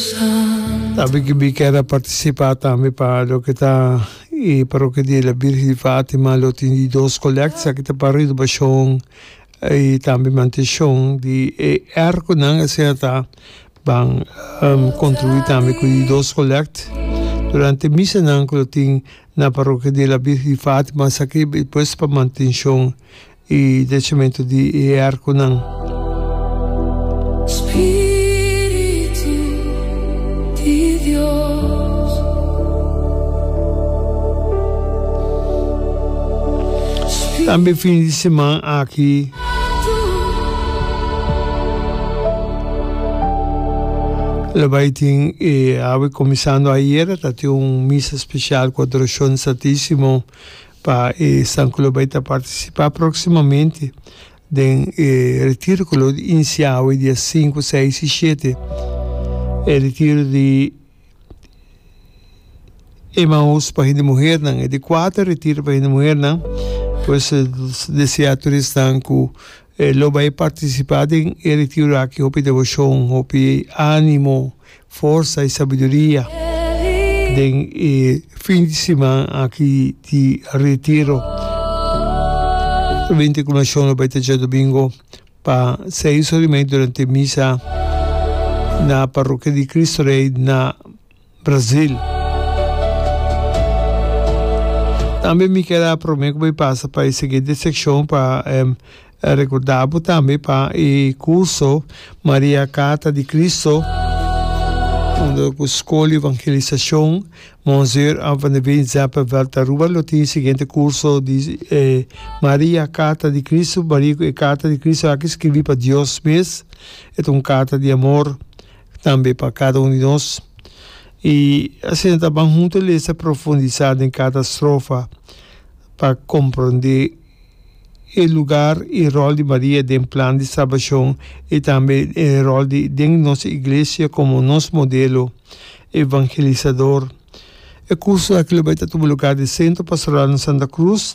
Sabi ki bi ker a partisipá tambe pa loke ta e Parokia di la Bírgen di Fátima, lo tin di dos kolèkta ki ta pa renobashon i tambe mantenshon di e èrkonan. Asina ta ban kontribuí tambe ku e dos kolèkta durante misanan ku lo tin na Parokia di la Bírgen di Fátima, esaki pues pa mantenshon. i dechamentu di e arkunan. Tambe fin di siman aki lo bai tin e awe kuminsando ayera ta tin un misa spesial ku adorashon Santisimo pa e san ku lo bai ta partisipá próksimamente den e retiro ku lo inisiá awe dia sinku, seis i shete, e retiro di Emaús pa hende muhernan, e di kuater retiro pa hende muhernan, pues deseá tur esnan ku E lo bai participa den e retiro aki hopi devocion, hopi animo, forsa y sabiduria den e fin di siman aki di retiro. Solamente cu nacion lo bai ta djadomingo pa seis ora y media durante misa na Parrokia di Cristo Rey na. Brasil. Tambe mi keda prome ku bo e pasa pa e siguiente sekshon pa rekorda bo tambe pa e kurso Maria Karta di Kristo hondo ku Skol di Evangelisashon Monzeur An van de Veen Zeppenveld ta Aruba lo tin e siguiente kurso di Maria Karta di Kristo Maria ku e karta di Kristo aki skirbi pa Dios mes e ta un karta di amor. tambe pa kada un di nos. I asina ta ban huntu a lesa profundisá den kada strofa pa komprondé e lugar i ròl di Maria den plan di salbashon i tambe e ròl di den nos iglesia komo nos modelo evangelisador. E kurso aki lo bai ta tuba lugar di Sentro Pastoral na Santa Cruz.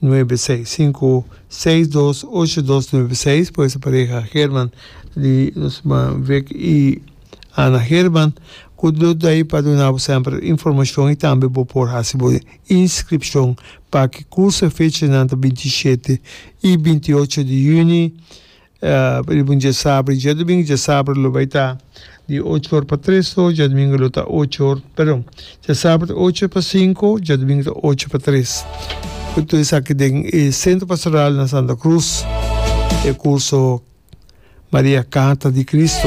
nuebe seis sinku seis dos ocho dos nuebe seis por esa pareha Herman di nos ma Vic y Ana Herman cu lo ta ahi pa duna bo semper informacion y tambe bo por haci bo inscripcion pa ki curso e fecha nan ta binti shete y binti ocho di juni Di un dje sabra, dje dumingu dje sabra lo bai ta di ocho or pa tres to dje dumingu lo ta ocho or, perdon, dje sabra ta ocho pa sinku, dje dumingu ta ocho pa tres. Ku tur esaki den e Sentro Pastoral na Santa Cruz, e kurso Maria Kata di Kristu.